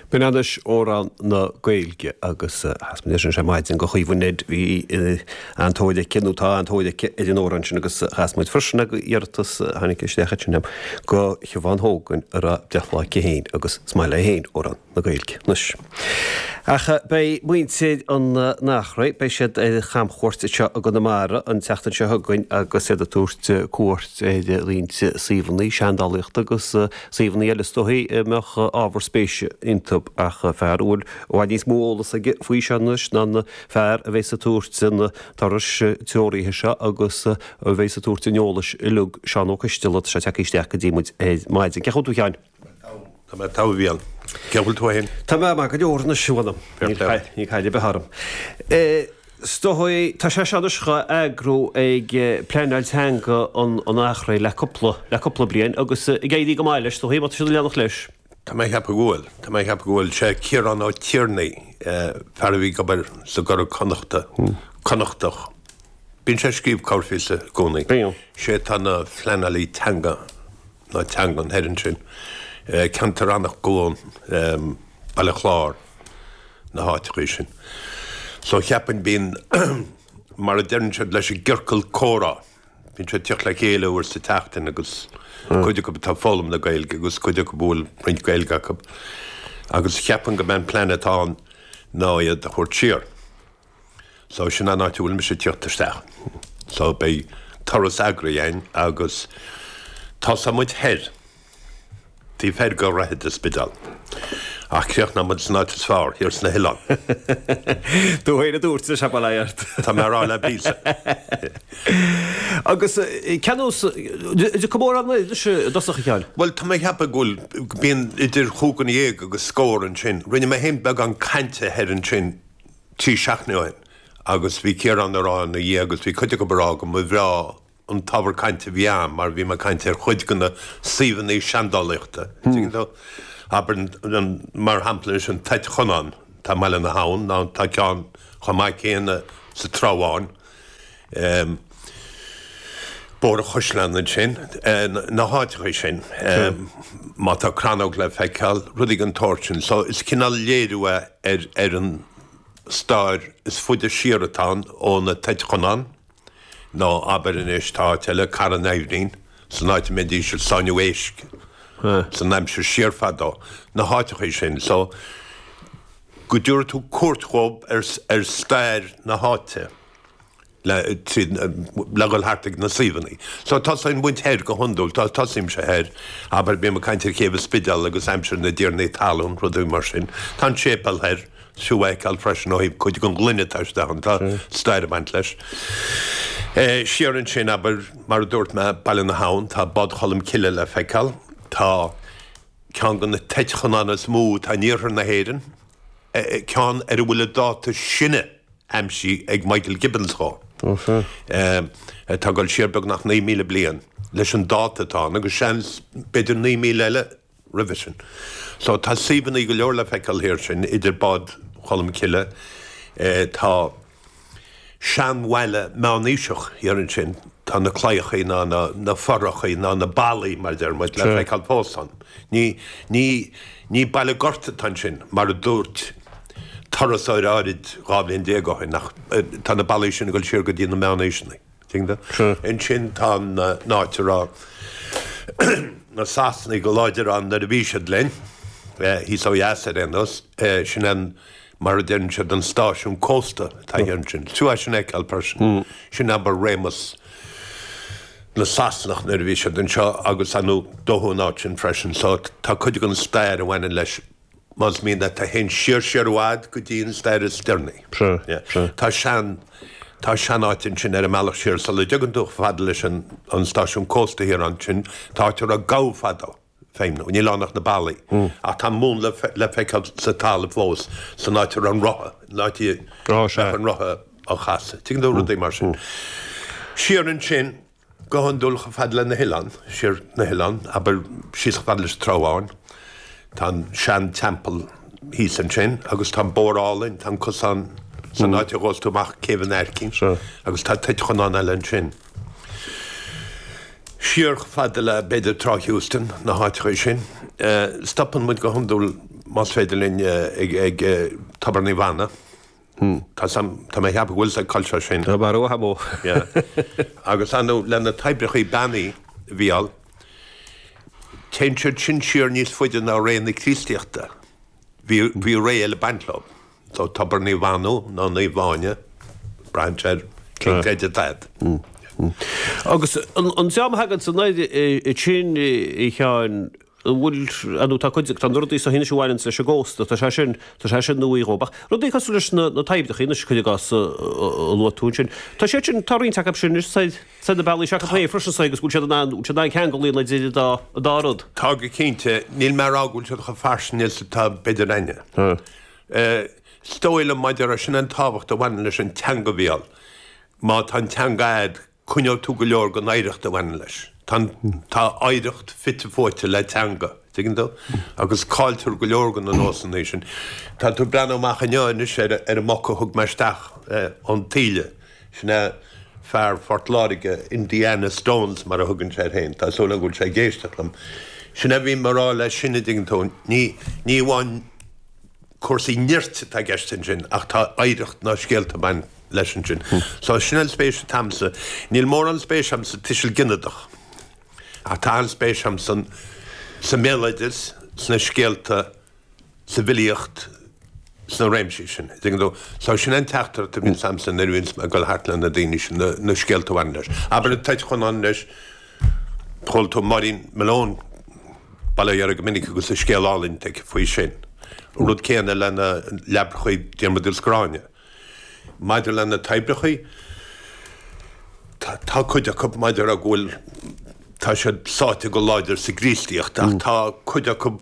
B'in anois amhrán na Gaeilge agus chas muid é sin ar maidin do Chaoimhín. Bhí an-tóir aige nó tá an-tóir aige ar an amhrán sin agus chas muid freisin é ar iarratas a tháinig isteach ansin againn do Shiobhán Hogan a raibh breithlá aici féin agus is maith léi féin amhrán na Gaeilge. Anois. Ach beidh muintir an Achréidh, beidh siad ar chamchuairt anseo i gConamara an tseachtain seo chugainn agus iad ag tabhairt cuairt ar roinnt suíomhanna seandálaíochta agus suíomhanna eile is dóigh a mbeadh ábhar spéis iontu ach fear a bhfuil i bhfad níos mó eolais aige faoi seo anois ná an fear a bheas ag tabhairt an turais treoraithe seo agus a bheas ag tabhairt an eolais uilig, Seán Ó Coistealbha. Tá sé ag teacht isteach go dtí muid ar maidin. Cén chaoi bhfuil tú a Sheáin? Tá mé togha a Bhriain. Cén chaoi bhfuil tú fhéin? Tá mé maith go leor anois a bhfuilim. Níl caill ar bith orm. Is dóigh tá sé seo anois dhá eagrú ag pleanáil teanga an Achréidh le cúpla, le cúpla bliain agus ag éirí go maith leis, is dóigh, má tá siad ag leanacht leis. Tá mé a cheapadh go bhfuil. Tá mé a cheapadh go bhfuil. Sé Ciarán Ó Tighearnaigh, fear a bhí ag obair sa gCuradh Connachta, Connachtach. Bíonn sé ag scríobh corrphíosa i gcónaí. Bíonn. Sé atá ina phleanálaí teanga. na teangan thoir ansin, ceantar Eanach Dhúin, Baile Chláir, na háiteachaí sin. So cheapainn bíonn, mar a deireann siad leis an gciorcal comhrá, bíonn siad ag tíocht le chéile uair sa tseachtain agus cuid acu atá ag foghlaim na Gaeilge agus cuid acu a bhfuil roinnt Gaeilge acu agus cheapainn gob é an plean atá ann ná iad a thabhairt siar. So sin an áit a bhfuil mise ag tíocht isteach. So beidh turas eagraithe againn agus tosóidh muid thoir. taobh thoir go háirithe den Spidéal ach críochnóidh muid san áit is fearr, thiar sna hoileáin. Do shaol, a dúirt leis ag filleadh ort. Tá mé ag rá le Bill san. Agus cén nós, is cé mhéad duine anois i dtosach a Sheáin. Bhuel tá mé ag ceapadh go bhfuil, bíonn idir chúig dhuine dhéag agus scór ansin. Rinne mé fhéin beagán cainte thoir ansin trí seachtainí ó shin agus bhí Ciarán ag rá ina dhiaidh agus bhí cuid acu dhá rá go mba bhreá an t-ábhar cainte a bhí ann mar bhí mé ag caint ar chuid de na suíomhanna seandálaíochta, tuigeann tú? Abair, mar shampla anois, an Toit Chonáin atá i mBaile na hAbhann, nó tá ceann chomh maith céanna sa Trá Bháin. Bóthar Chois Locha ansin, na háiteacha sin, má tá crannóg le feiceáil, rudaí den tsórt sin. So is cineál léiriú é ar an stair is faide siar atá ann ó na Toit Chonáin, nó abair anois tá áit eile, Cora an Aibhnín, san áit a mbeidís ag sáinniú éisc san aimsir siar fadó, na háiteacha sin. So. go dtabharfaidh tú cuairt dhóibh ar stair na háite le tríd le dhul thart ag na suíomhanna. So tosaíonn muid thoir go hiondúil, tosaímse thoir, abair bím ag caint ar Chéibh an Spidéil agus aimsir na dtiarnaí talún, rudaí mar sin. Tá an séipéal thoir, is fiú a fheiceáil freisin ó thaobh cuid den ghloine atá istigh ann, tá stair ag baint leis. Siar ansin, abair, mar a dúirt mé, Baile na hAbhann, tá Bád Cholm Cille le feiceáil, tá. Ceann de na toit Chonáin is mó atá in iarthar na hÉireann, ceann ar a bhfuil an dáta sine aimsithe ag Michael Gibbons dhó, atá ag dul siar beagnach 9,000 bliain leis an dáta atá ann, agus seans b'fhéidir 9,000 eile roimhe sin. So tá suíomhanna go leor le feiceáil thoir sin, idir Bád Cholm Cille, tá. seanbhaile meánaoiseach thiar ansin. Tá na claíochaí nó na fothrachaí nó na ballaí, mar a deir muid, le feiceáil fós ann. Ní baile gorta atá ansin, mar a dúirt turasóir áirid dhá bhliain déag ó shin, ach tá na ballaí sin ag dul siar go dtí na meánaoiseanna. Ansin tá an áit a raibh na Sasanaigh go láidir ann nuair a bhí siad linn, thíos ó dheas ar aon nós, sin an. mar a deireann siad, an stáisiún cósta atá thiar ansin. Is fiú é sin a fheiceáil freisin. Sin abair réimeas na Sasanach nuair a bhí siad anseo agus dódh an áit sin freisin. So tá cuid den stair a bhaineann leis, más mian leat, a théann siar siar i bhfad go dtí an stair is deireanaí. Tá sean, tá sean áit ansin ar an mbealach siar sula dteagann tú chomh fada leis an stáisiún cósta thiar ansin, tá áit a raibh gabha fadó. feidhmiú. Níl ann ach na ballaí ach tá an múnla le feiceáil sa talamh fós, san áit a raibh an rotha, an áit a mbeadh an rotha á chasadh. Tuigeann tú, rudaí mar sin. Siar ansin, go hiondúil chomh fada le na hoileáin, siar na hoileáin, abair síos chomh fada leis an Trá Bháin, tá an sean teampall thíos ansin agus tá an bóthar álainn, tá an cosán san áit a ghabhas tú amach Céibh an Aircín agus tá toit Chonáin eile ansin. Siar fhad le b'fhéidir Trá Heuston, na háiteacha sin. Stopann muid go hiondúil más féidir linn ag Tobar Naomh Anna. Tá sam, tá mé ag ceapadh go bhfuil sa cultúr sin. Tá mar uatha mó. Yeah. Agus Anna le na toibreachaí beannaithe a bhí ann, téann siad sin siar níos faide ná ré na Críostaíochta. Bhí, bhí ré eile, Bank Club. Tá Tobar Naomh Anna, nó Naomh Áine, brainse ar Cill Bhrighde That. Agus an dream a thagann san aire sin, a Sheáin, an bhfuil, nó tá cuid, tá na rudaí seo anois a bhaineanns leis an gcósta, tá sé sin, tá sé sin nuaí dhóibh, ach rudaí cosúil leis na toibreacha anois, cuir i gcás, a luaigh tú ansin, tá siad sin, tá roinnt acu sin anois said, said na bealaí seo acu freisin said agus go bhfuil siad in ann, bhfuil siad in ann ceangal a dhéanamh idir an dá, an dá rud. Tá go cinnte, níl mé a rá go bhfuil siad chomh fairsing is atá b'fhéidir, Is dóigh liom maidir leis sin an tábhacht a bhaineann leis an teanga a bheith ann. Má tá an teanga a'd, coinneoidh tú go leor den oidhreacht a bhaineann leis. Tá an, tá oidhreacht fite fuaite le teanga, tuigeann tú? Agus cailltear go leor de na nósanna sin. Tá tú ag breathnú amach inniu anois ar an, ar an mboc a thug mé isteach ón taoille. Sin é fear Phort Láirge, Indiana Stones, mar a thugann sé air féin. Tá súil agam go bhfuil sé ag éisteacht liom. Sin é a bhím ag rá leis sin, a' dtuigeann tú. Ní, ní amháin cúrsaí nirt atá i gceist ansin ach tá oidhreacht na scéalta a bhain leis ansin. So, sin é an spéis atá a'msa. Níl mórán spéis a'm sa tuiseal gineadach ach tá an-spéis a'm san, sa mbéaloideas, sna scéalta, sa bhfilíocht sna réimsí sin. Is éigin dó, so sin an teachtaireacht a bhíonn agamsa nuair a bhíonns mé ag dul thart le na daoine sin, na scéalta a bhaineann leis. Abair Toit Chonáin leis, chuala tú Máirín Malone, bail ó Dhia uirthi, go minic agus a scéal álainn aici faoi sin. An rud céanna le na leabrachaí Diarmuid agus Gráinne. Maidir le na toibreachaí, tá cuid acu maidir le go bhfuil, tá siad sáite go láidir sa gCríostaíocht ach tá cuid acu,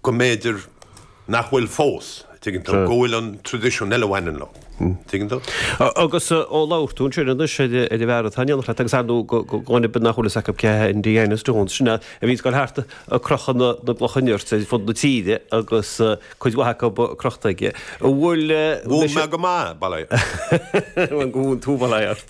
go mb'fhéidir nach bhfuil fós, a' dtuigeann tú, go bhfuil an traidisiún eile a bhaineann leo, tuigeann tú? Agus ó labhair tú ansin anois ar an bhfear atá in éineacht leat agus ar ndú go go go nach bhfuil fhios acu cé hé Indiana Stones, sin é a bhíonns ag dul thart a' crochadh na na gclocha nirt ar fud na tíre agus cuid mhaith acu crochta aige. An bhfuil Mhúin mé go maith, bail air. Go mhúin tú bail ó Dhia ort.